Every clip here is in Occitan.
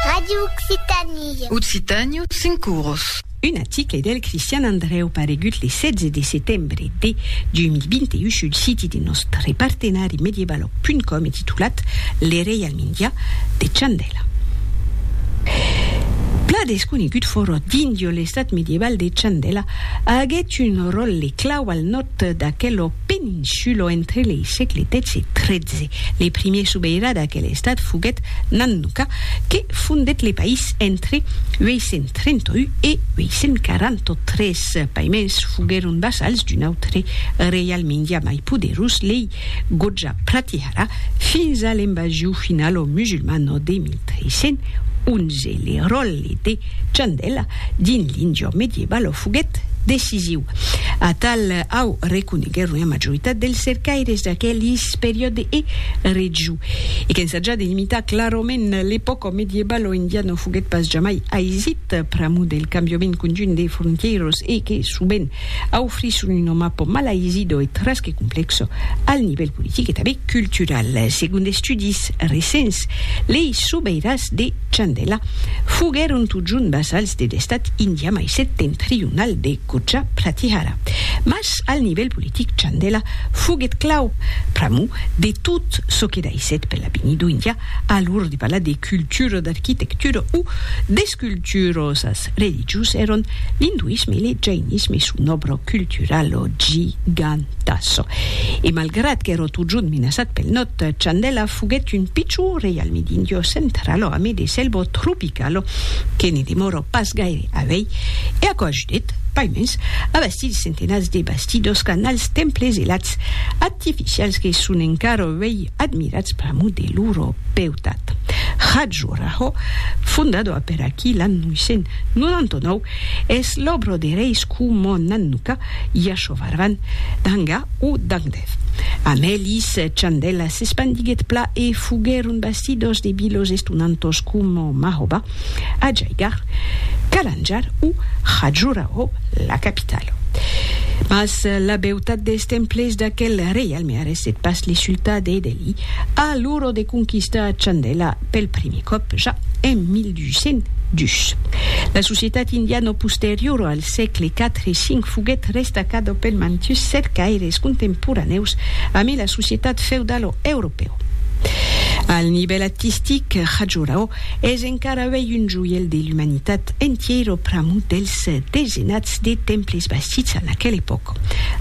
Radio Occitanie. Occitània, cinc oros. Un article del Cristian Andrèu paregut le 16 de setembre de 2021 sul siti de nòstre partenari medievaloc.com e titulat Le reialme indià de Chandela. Plan desconegut fòrot d'Indio, l'estat medieval de Chandela aguèt un ròtle clau al nòrd d'aquel peninsulo entre lei sègle xii e xiii. Le primier sobeirà d'aquel estat foguèt Nannuka, que fondèt le país entre 831 e 843. Paimens foguèron vassals d'un autre reial mindià mai poderós, lei Goja Pratihara, fins a l'invasion finalo musulmano de 1311. Le ròl Tete, Chandèla, dins l'injure medievale o foguèt decisiu. Atal au reconeguèron ua majoritat dels cercaires d'aquelis periòde e règiu. E qu'ensajar de limitar clarament l'epòca medievale o indiana no foguèt pas jamai aisit pr'amor del cambiament conjunt de frontièiras e que sovent aufrisson una mapa mal aisida e tras que complèxa al nivèl politic e tanben cultural. Segon d'estudis recents, lei sobeiràs de. Chandela, foguèron totjorn vasals de l'estat indià mai septentrional de Gurja Pratihara. Mas al nivèl politic Chandela foguèt clau pr'amor de tot çò que daissèt per l'avenir d'Índia a l'or de parlar de cultura, d'arquitectura o d'esculturas. religiós èron l'induisme e le jainisme, son òbro cultural ò gigantassa. E malgrat qu'èra totjorn menaçat pel nòd, Chandela foguèt un pichon reialme d'Indiò central ò ame de selva tropical ò que ne demòra pas gaire a vei e aquò ajudèt, paimens, a bastir de centenats de bastidors, canals, temples e lats artificials que son encara a vei Admirats pr'amor de loro beutat, Khajuraho, fondada per aquí l'an 999, es l'òbra de reis coma Nannuka, Yashovarman, Danga o Dangdev. Amb elis, Chandela s'espandiguèt pla e foguèron bastidas de vilas estonantas coma Mahoba, Ajaigarh, Kalanjar o Khajuraho, la capitala. Mas la beutat dels temples d'aquel reialme Me arresse pas li sultar d'Edeli a l'oro de conquistar Chandela pel primi còp ja en 1202. La societat indiano posteriora al sègle 4 e 5 foguèt restacada pel mantus cercaires contemporanèus amé la societat feudalo europèu. Al nivèl artistic, Khajuraho es encara uèi un joièl de l'umanitat entièra pramut dels desenats de temples bastits a l'aquel epòc.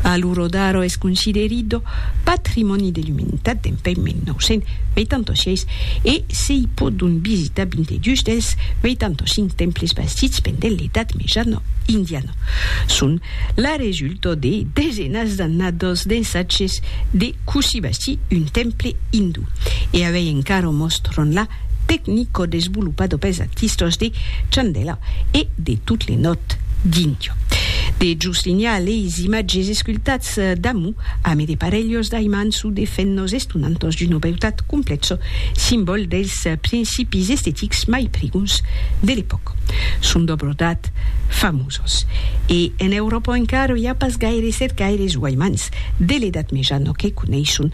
A l'Urodaro es considerit do Patrimòni de l'Umanitat dempuèi 1986 e se i pòdon visitar 22 dels 85 temples bastits pendent l'Edat Mejana Indiana. Son la resulta de desenas d'annadas d'ensatges de cossí bastir un temple indú e avèi encara mòstran la tecnico-desvolopado pels artistas de Chandela e de Tot le Nòrd d'Índia. De Joslinia leis imatges escultats damú ame de parelhos d'aimants o de fenhos estonantas d'una beutat complèxa, simbòl dels principis estetics mai prigons de l'epòca. Son d'òbras d'art famosas. E en Euròpa encara i a pas gaires cercaires o aimants de l'Edat Mejana que coneisson